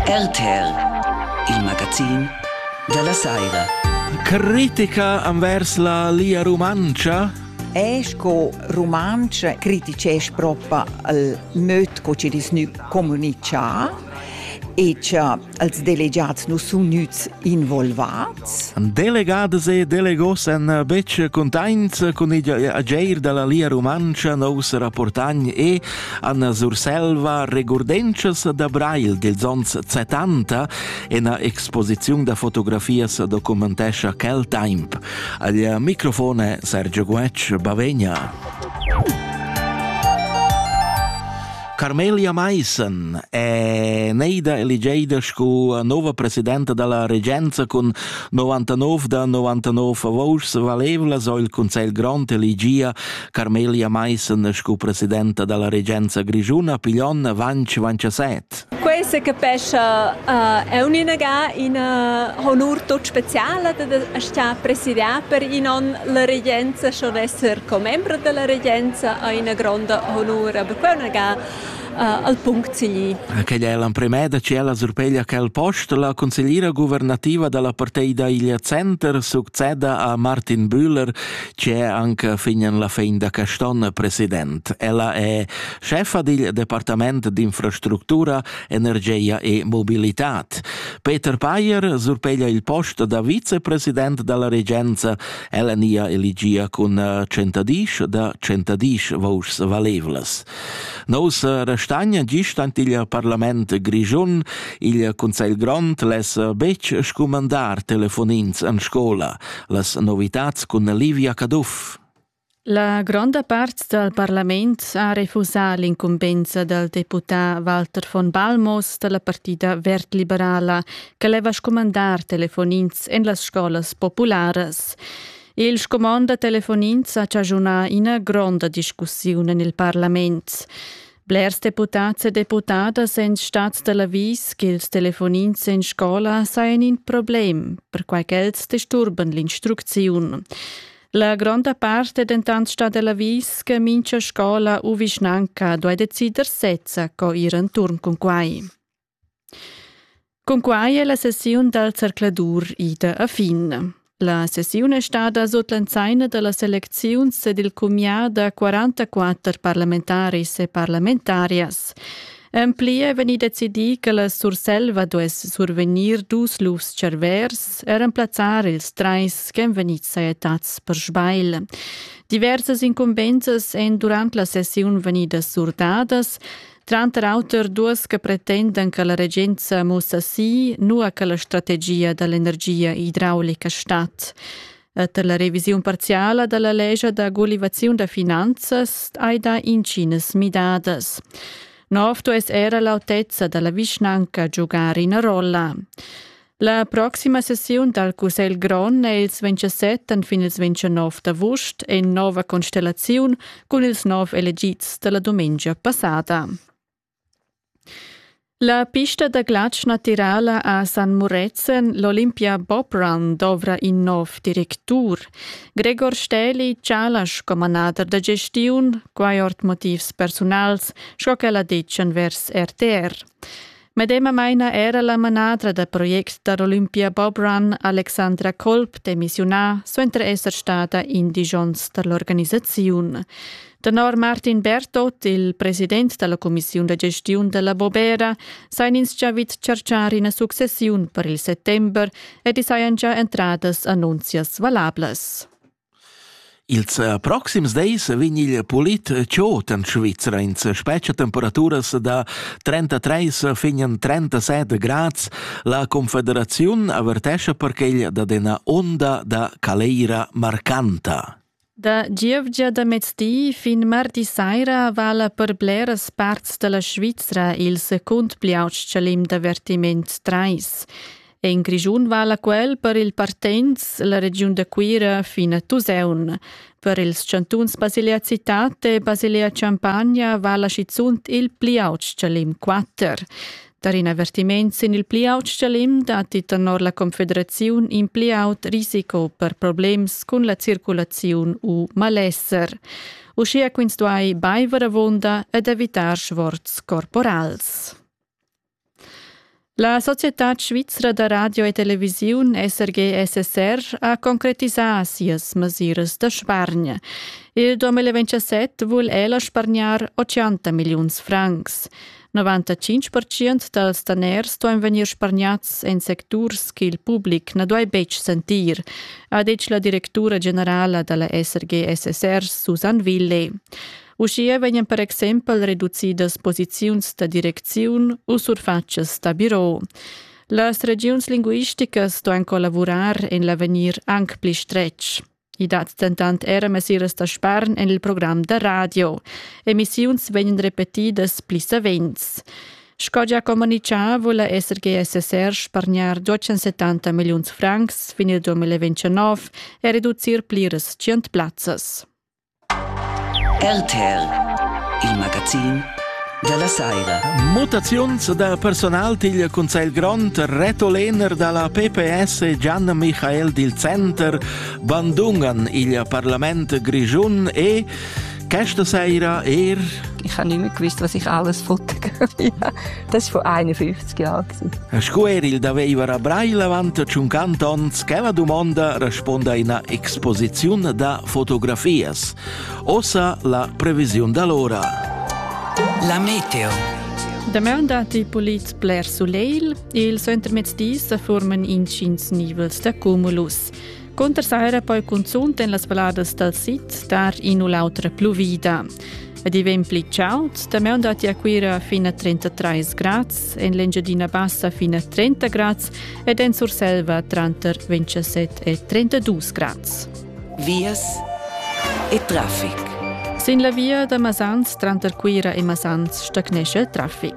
RTL, il magazin dalla saira. Critica envers la Lia Rumantscha? E sco rumantscha criticesch proprio il möd co che ins nu comunica e che als delegats nu sun gnüts involvats. Delegadas e delegos en bec cuntaints cun igl ageir dalla Lia Rumantscha nous rapportagn e Anna Surselva, regurdenschas da Brail dels ons 70, ena exposiziun da fotografias documentescha quel temp. Al microfone Sergio Guetsch, Bavegna. Carmelia Meissen è neida eligeida scu nova presidenta dalla regenza cun 99 da 99 vouschs valevlas o il Consell Grond eligia Carmelia Meissen sco presidenta dalla regenza grischuna piglion avanti vanciasset. Quei se capescha uh, è un'inaga ina honur tot speciala da sta presidiar per in on la regenza, schon esser commembra della regenza ha ina gronda honur, aber quei unaga uh, al punct sigli. Aquella è l'emprema da ciela surpeglia che il post la consigliera governativa della parteida Iglia Center succeda a Martin Bühler, c'è anche fin alla fin da Caston president. Ella è chefa dil Departament d'infrastruttura, energia e mobilità. Peter Payer surpeglia il posto da vicepresident dalla regenza. Ella nia eligia cun eh, centadish da centadish vours valevlas. Nous eh, restagna gist ant il parlament grigiun, il Consell Grond les eh, bec scumandar telefonins an scola. las novitads cun Livia Caduff. La gronda part dal parlament ha refusà l'incumbensa dal deputà Walter von Balmos da la partida verd-liberala che leva scumandar telefonins en las scolas popularas. Il scumond da telefonins ha chaschunà ina gronda discussiun en il parlament. Blers deputats e deputadas èn stads da l'avis ch'ils telefonins en scola sajan in problem, perquai ch'els disturban l'instrucziun. La gronda part è dentant stada l'avis che mincha scola u vischnanca duai decider sezza co ir enturn cun quai. Cunquai è la sessiun dal zercladur ida a fin. La sessiun è stada sut l'ensaina da las elecziuns ed il cumià da 44 parlamentaris e parlamentarias. En pli è vegnì decidì che la Surselva duess survegnir dus lufs cervers e remplazzar ils trais ch'èn vegnids sajettads per sbagl. Diversas incumbensas èn durant la sessiun vegnidas surdadas. Tranter auter duas che pretendan che la regenza mussa si, nua che la strategia dall'energia idraulica stat. Per la revisiun parziala dalla lescha da gulivaziun da finanzas hai dà intginas midadas. Nov duess era l'autezza dalla vischnanca giugar ina rolla. La proxima sessiun dal Cussegl grond è ils 27 fin ils 29 d'avust en nova constellaziun cun ils nov elegids da la dumengia passada. La pista da glatsch natirala a San Muretzen, l'Olympia Bob Run, dovra in nov directur. Gregor Stäli chala sco manader da gestiun, quai ord motivs persunals, sco ch'el ha ditg envers RTR. Medemamaina era la manadra da projects da l'Olympia Bob Run, Alexandra Kolb, demissiunà suenter esser stada in disch onns da l'organisaziun. Tenor Martin Bertot, il president da la cumissiun da gestiun da la Bobera, sajan ins già vid chargiar ina successiun per il settember ed i sajan già entradas annunzias valablas. Ils proxims dis vegn il pulit tschot en Svizra. Ins spetga temperaturas da 33 fin en 37 grads. La Confederaziun avertescha perquel dad ina onda da caleira marcanta. Da gievgia da mezdi fin mardi saira vala per bleras parts da la Svizra il secund pli aut chalim d'avertiment 3. E in Grischun vala quel per il partenz la regiun da Cuira fin a Tusaun. Per ils chantuns Basilea Citate e Basilea Champagna vala schizunt il pli aut chalim 4. Tar in avertiment sin il pli aut chalim datti tenor la Confederaziun in pli aut risiko per problems cun la circulaziun u malesser. Uschia quins duai baiver avunda ed evitar sforz corporals. La Societad svizra da radio e televisiun SRG-SSR ha concretisà sias mesiras da spargn. Il 2017 vul ella spargnar 80 milliuns francs. 95% dals daners ston vegnir spargnats en secturs ch'il public na duai betg sentir, ha detg la directura generala da la SRG-SSR Susanne Ville. Uschia vegnan per exempel reducidas posiziuns da direcziun u surfatschas da biro. Las regiuns linguisticas ston collavurar en l'avegnir anc pli stretg. I dat dentant era mesiras da spargn en il program da radio. Emissiuns vegnan repetidas pli savens. Sco già communicà vula SRGSSR spargnar 270 milliuns francs fin il 2029 e reducir pliras 100 plazzas. RTR, il magazin dalla saira. Mutaziuns da personal digl Cunsegl Grond, Reto Lehner dalla PPS e Gian Michael dil Center bandungan il Parlament Grischun e questa saira er ich habe nicht mehr gewusst, was ich alles wollte Das vor 51 Jahren. Sco er il daveva a Brail avant 50 ans che la domanda responda ina exposizione da fotografias. Osa la previsione d'allora. La meteo. Damaun datti polits bler sulegl. Il suentermezdi sa forman intgins nivels da cumulus. Cunter saira poi cunzunt en las valladas dal sid star in u l'autra pluvida. Ed i vegn pli chaud, damaun datti a Cuira fin a 33 grads, en l'Engiadina Bassa fin a 30 grads ed en Surselva tranter 27 e 32 grads. Vias e traffic. Sin la via da Masans tranter Cuira e Masans stagnescha il traffic.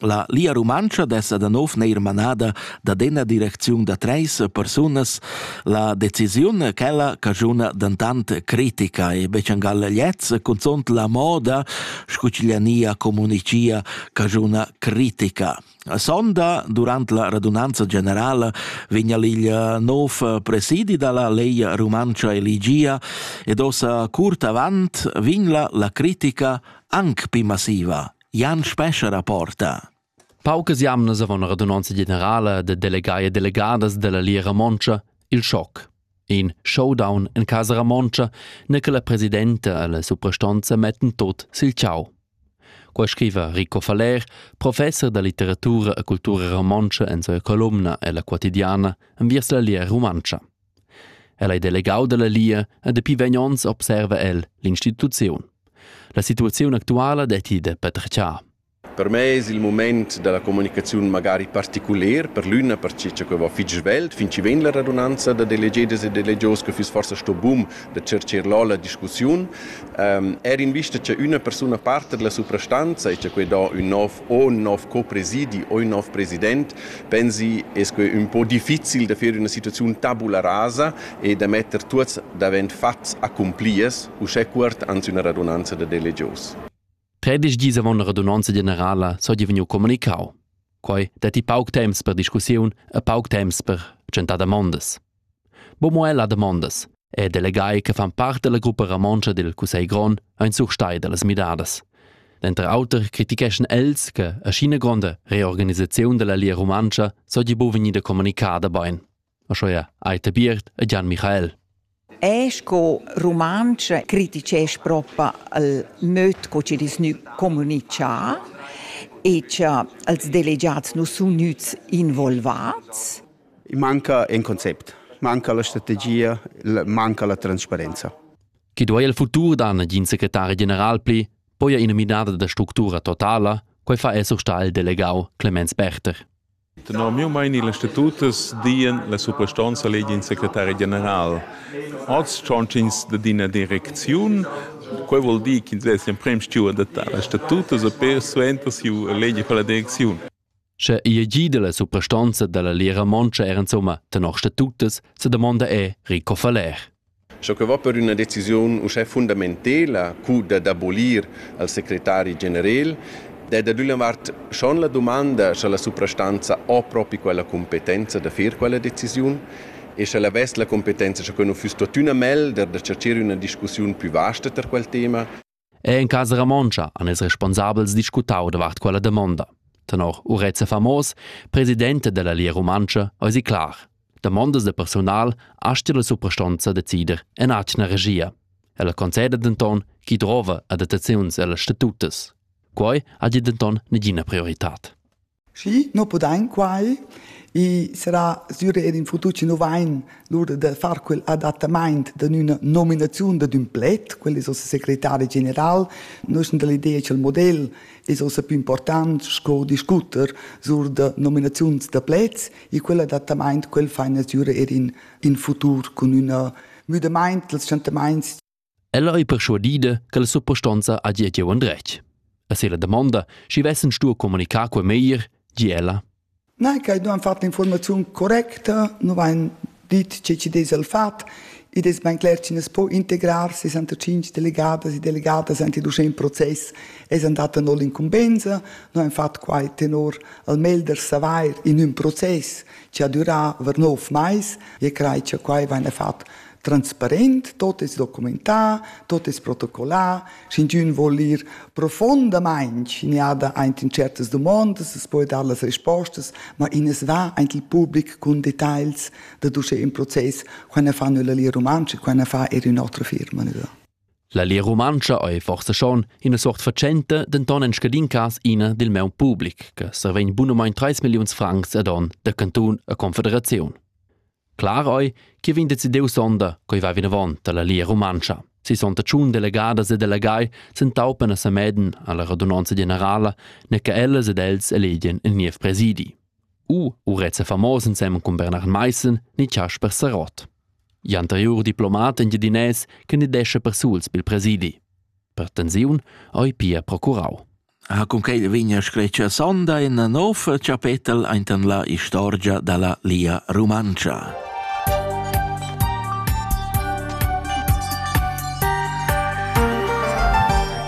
La Lia Rumantscha dessa da nov neir manada da dena direcziun da treis persunas, la decisiun quella cagiuna dentant critica e bechangal gliez cunzont la moda scu ch'iglia nia comunicia cagiuna critica. A sonda, durant la radunanza generala, vigna l'iglia nov presidi dalla Leia Rumantscha Eligia ed ossa curt avant vigla la critica anc pi massiva. Jan Spescha rapporta. Paucas jamnas avon radunonza generala de delegai e delegadas della Lia Romontscha il schoc. In showdown en casa Romontscha ne che la presidenta e la suprastonza metten tot sil ciao. Qua scriva Rico Faller, professor da litteratura e cultura romontscha en sua columna ella quotidiana enviers la Lia Rumantscha. El ei delegau dalla Lia e dapi vegn onns observa el l'instituziun. La situaziun actuala detti de petretschar. Per me es il moment da la comunicaziun magari particuler per l'üna perche cha que va fich svelt, fin chi vegn la radunanza da delegedas e delegios que füss forsa sto bun da tschercher là la discussiun. Ähm, eir in vista cha üna persuna parta dalla suprastanza e cha que dà ün nov ho ün nov co-presidi, ho ün nov president, pensi es que ün po difficil da fer üna situaziun tabula rasa e da metter tuots davent fats accumpliers uschè cuort ans üna radunanza da delegios. Tredisch dis avant la radunanza generala s'ho divegniu comunicau. Quai detti pauc temps per discussiun e pauc temps per tschentar damondas. Bo mo ella damondas e delegai che fan part dalla gruppa romontscha dil cussegl grond ein surstai dallas midadas. Denter auter criticheschan els che ascina gronda reorganisaziun dalla Lia Rumantscha sogli bu vegnida communicada bein. Aschia ei Tabiert e Gian Michael. E sco rumantsch criticesch propa al möd co che dis nu comunicà e cha als delegiats nu sun gnüts involvats. I manca in concept, manca la strategia, manca la transparenza. Che duai il futur da negin secretari general pli? Poi ina midada da structura totala? Quai fa esser sta il delegau Clemens Berter. Tenor miu meini l'institutus dien la suprastonza legin secretari general. Oz chonchins de dina direcziun, quei vuol dir che ins in prem steward da l'institutus e per suenter siu legi per la direcziun. Sche ei gi dalla suprastonza dalla Lira Montscha er insomma tenor statutas sa domanda è Rico Faller. Sco che va per üna decisiun uschè fundamentela cu da d'abolir al secretari generel, è da d'üna vart schon la dumanda sche la suprastanza ho propi quella competenza da fer quella decisiun e sche la vess la competenza sco nu füss tuottüna melder da cercher üna discussiun plü vasta tar quel tema. E en casa romontscha han ils responsabels discutau davart quella damonda. Tenor Urezza Famos, presidente della Lia Rumantscha, eisi clar. Damondas de personal asti la suprastonza decider en atgna regia. Ella conceda denton chi drova adattaziuns ellas statutas. Quei ha denton negina prioritad. Schi, no pudain quai. I sarà sür eir in futur chi nu vain lura da far quel adattamaint da üna nominaziun dad ün pled, quel es uossa secretari general. Nus sun da l'idea cha'l model es uossa pü important sco discuter sur da nominaziuns da pleds e quel adattamaint quel faina sür eir in in futur cun üna müdamaint dals tschantamaints Ella ei perschuadida che la suppostonza hagi giu endretg. E se la damonda, schi vessen stuo communicar quei meglier, gi ella. Nei, che non han fatto l'informazione correcta, non han dit che ci des al fat, ed es ben cler che ne po integrar 65 delegadas e delegadas anche durch ein Prozess es andata null incumbensa, non han fatto quai tenor al melder savair in un process che ha durà ver nov mais e crai che quai venne fatto transparent, tot es documentà, tot es protocollà, sch'ingiün vuol ir profondamaing schiniada aint in certas domondas, es poi dar las respostas, ma in es va aint il public cun details da duce in process, quai ne fa nella Lia Rumantscha, quai ne fa er ün'otra firma. Nida. La Lia Rumantscha ei forse schon ina sort facente, denton en scadin cas ina dil meu public, che survegn bunomein 3 milliuns francs ad on de cantun a confederaziun. Clar ei che vegn decidiu sonda co va vinavon dalla Lia Rumantscha. Sissonta tschun delegadas e delegai s'entaupan a Sameden alla radunanza generala, ne che ellas ed els elegien il niev presidi. U urezza famos ensem cun Bernard Meissen ni Casper Sarott. Gl'anteriur diplomat engiadinès candidescha persuls bil presidi. Per tensiun ei pia procurau. Ha cunquei vegn scretga sonda ina nova chapetel ainten la istorgia dalla Lia Rumantscha.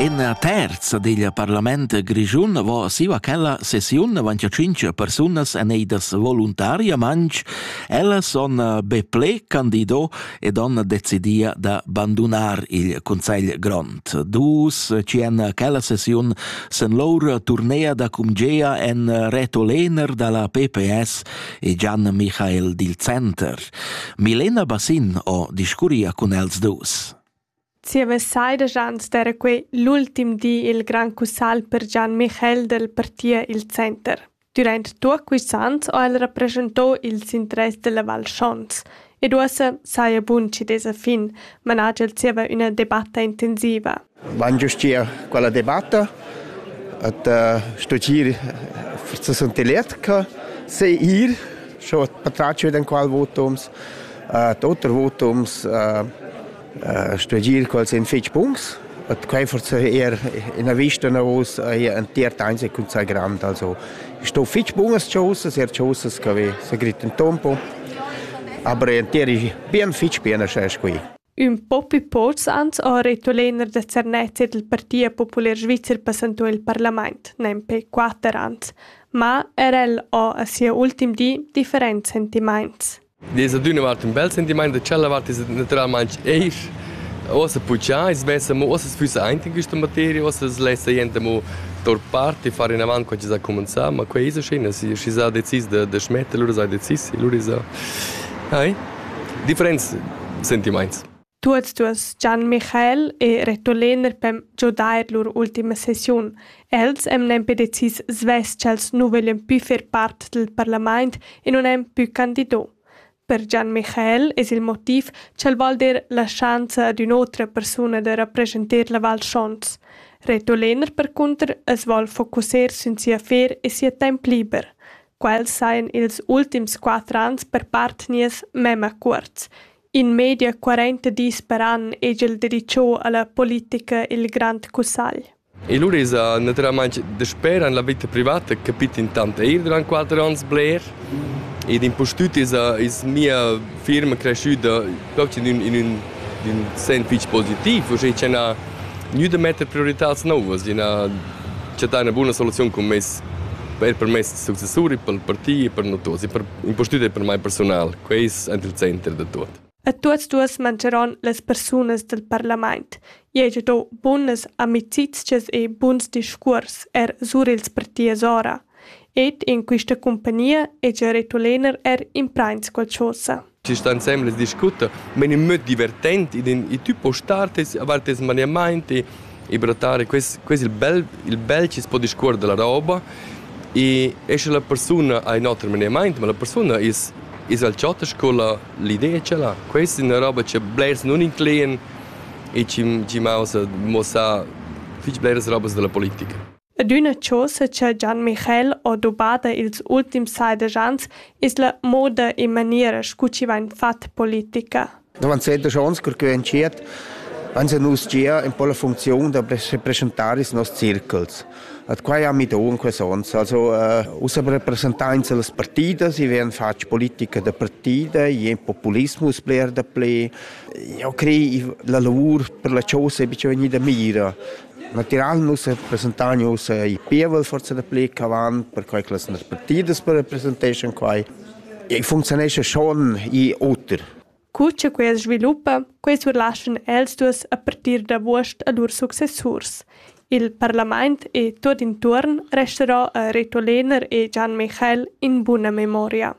Ina terza digl parlament grischun vo siva chella sessiun avantia cinc persunas eneidas voluntariamantsch. Ellas son be ple candido ed on decidia da bandunar il Consegl Grond. Dus cien quella sessiun sen lor turnea da cumgea en Reto Lehner da la PPS e Gian Michael Dil Center. Milena Bassin o discuria cun els dus. Zieva sai daja ans d'eira quai l'ultim di i'l grand cussagl per Gian Michel dal partir i'l center. Dürant tuot quists ans ho el rapreschanto ils interess della Val Schons ed uossa saja bun chi desa fin, manaja el zieva üna debatta intensiva. Van giustir quella debatta et uh, studir se sunt eletga, se ir, scho patratg vid en qual votums, uh, oter votums, uh, stuegir quels ein fetg buns. Et quei forse eher ina vista navos ei ein tiert einzig cun sa grand also sto fetg bunas chosas er chosas che vi se grit un tempo aber ein tieri bien fetg bien schas qui Ün po più poz ans ha retto lener da Zernezia del Partia Popular Svizzer passantò il parlament, nempe quatter ans, ma er el ha a sia ultim di differents sentimaints. Ed es adüna vart ün bel sentimaint da tschella vart es natüralmaing eir uossa putschà, i's vessa amo uossa füssa aint in quista materia, uossa as lessa jent amo tor part e far inavant co chi s'ha cumanzà, ma quai esa schön, schi s'ha decis da da schmetter, lura s'ha decis e lura esa... Ai, differents sentimaints. Tuots duos, Gian Michael e retur Lener per giodair lur ultima sessiun. Els emnan nempe decis svess ch'els nu voglian pü fer part del parlamaint e nun han pü candido. Per Gian Michael es il motiv ch'el voul dir la schanza ad ün'otra persuna da rappresenter la Val Schons. Retur Lener percunter as voul focussar sün sia affer e sia temp liber. Quels sajan ils ultims quatter ans per part nies mema cuorts. In media quarenta dis per an hegel dedicho alla politica il Grand Cussagl. E lur esa naturalmaing dasper an la vita privata capit intant eir durant quatter ans bler ed impustüt esa es mia firma creschüda proprio in ün, in ün, in ün sen fich positiv, uschè cha n'ha gnü da metter prioritats nouvas, ina chattà üna buna soluziun cun meis per per meis successuri, per il parti e per no tuots e per Impustüt è per mai personal, queis aint il center da tuot. E tuots duos mancheron las persunas del parlament. I hegia do bunas amicizchas e buns discuors er sur ils partiers ora. Ed in quista compagnia hegia retulener er imprains qualchosa. Ci sta insembel e discuta, ma è möt divertent, e tü può star tes, avar tes maniamaint e e per adattare quest, quest il bel, il bel chi po discuor della roba e e sche la persuna ha in oter menimaint, ma la persuna is is al ciotas con la l'idea c'è là. Questa è una roba che blers non incluen e ci ci mausa mossa fich bleras robas della politica. Ed üna chosa cha Gian Michael ho dubada ils ultims seidesch ans es la moda e maniera scu chi vain fat politica. Durant sedesch ons cur ch'eu entschiet, ans han nus gia ün po la funcziun da represchentar ils noss circuls. Ad quai ami do in quels ons. Also äh, ussa representains las partidas, i vegn fatg politica da partida, i è populismus bler da ple. Eu crei la lavur per la chosa è bice vegnida mira. Natiral nus representain ussa il pievel forsa dapli ch'avant, perquai che las partidas per representeschan quai. E funcziunescha schon i oter. Cu che quels sviluppa, quei surlaschan els dus a partir d'avuost a lur successurs. Il parlament e tot intuorn restarà a Reto Lehner e Gian Michael in buna memoria.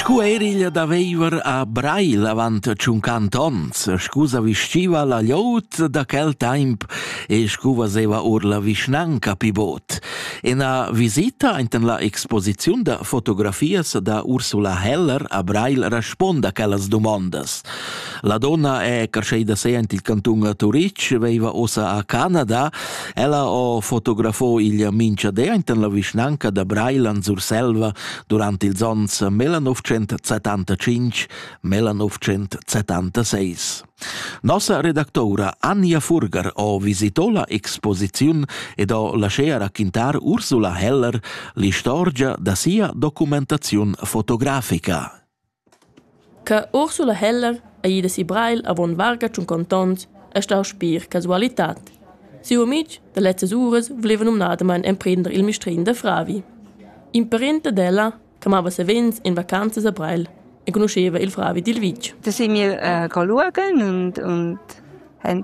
Scu eriglia da veiver a Brail avant tschunquant ons, scu sa vestiva la gliout da quel taimp e scu vaseva or la vischnanca pi bod. Ena visita ainten la exposiziun da fotografias da Ursula Heller a Brail responda quellas dumondas. La donna è carsceida se ant il cantun a Turitg, veiva ossa a Canada. Ella ho fotografo il mincha de enten la vischnanca da Brailand Surselva durant ils ons 1975 1976. Nossa redactora Anja Furger ho visitò la exposiziun ed ho laschea raquintar Ursula Heller l'istorgia da sia documentaziun fotografica. Che Ursula Heller ei ida si Breil avon varga tschunconta onns ei stau spir casualitad. Siu amitg da lezzas uras vuleva numnadamain emprender il mistrin da fravi. In parent ad ella, che mava savens en vacanzas a Breil, enconuscheva il fravi dil vitg. Da si mir uh, coluogl und, und haben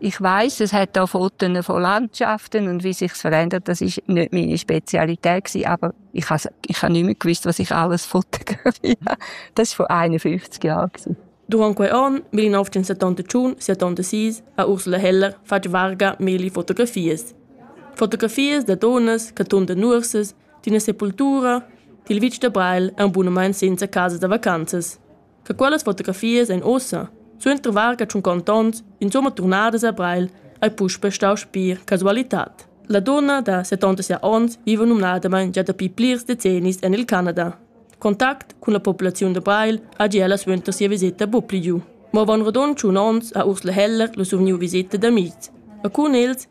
Ich weiß, es hat da Fotos von Landschaften und wie sich's verändert, das ist nicht meine Spezialität gewesen, aber ich habe ich nicht mehr gewusst, was ich alles fotografiere. Das ist vor 51 Jahren gewesen. Durant quei onn, 1971, 76, ha Ursula Heller fatg varga meli fotografies. Fotografies da donas, cartun da nurses, d'una sepultura, dil vitg da Breil e un bunamein senza casa da vacanzas. che quellas fotografias ein ussa, suenter varga tschunca onns, insumma turnadas a Breil, ei puspei stau spir casualitad. La dunna da 76 onns viva numnadamain gia dapi plirs decennis en il Canada. Contact cun la populaziun da Breil ha gia la suenter sia visita bupligiu. Mo von radon tschun onns ha Ursula Heller lu survgniu visita d'amics. E cun els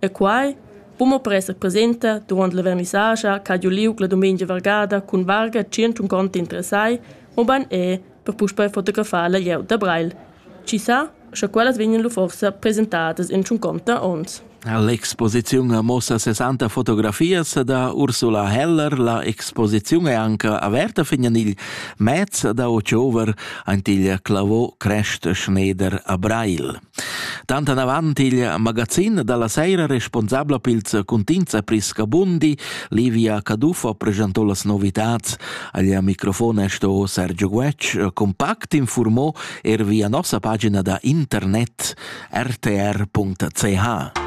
E quai po mo presser presenta durant la vernissascha ch'ha giu liug la dumengia vargada cun varga tschient conti interessai, mobein er per puspei fotografar la glieud da Breil. Chi sa, sche quellas vegnan lu forsa presentadas in tschunconta onns. L'exposiziun muossa 60 fotografias da Ursula Heller. La exposiziun è anche averta fin in il mez da ottober, ein il clavò Crest Schneider a Breil. Tant anavant il magazin dalla seira responsabla pils cuntigns a Prisca Bundi, Livia Caduffo presentò las novitats. Agl microfon è sto Sergio Guetg, compact informò er via nossa pagina da internet rtr.ch.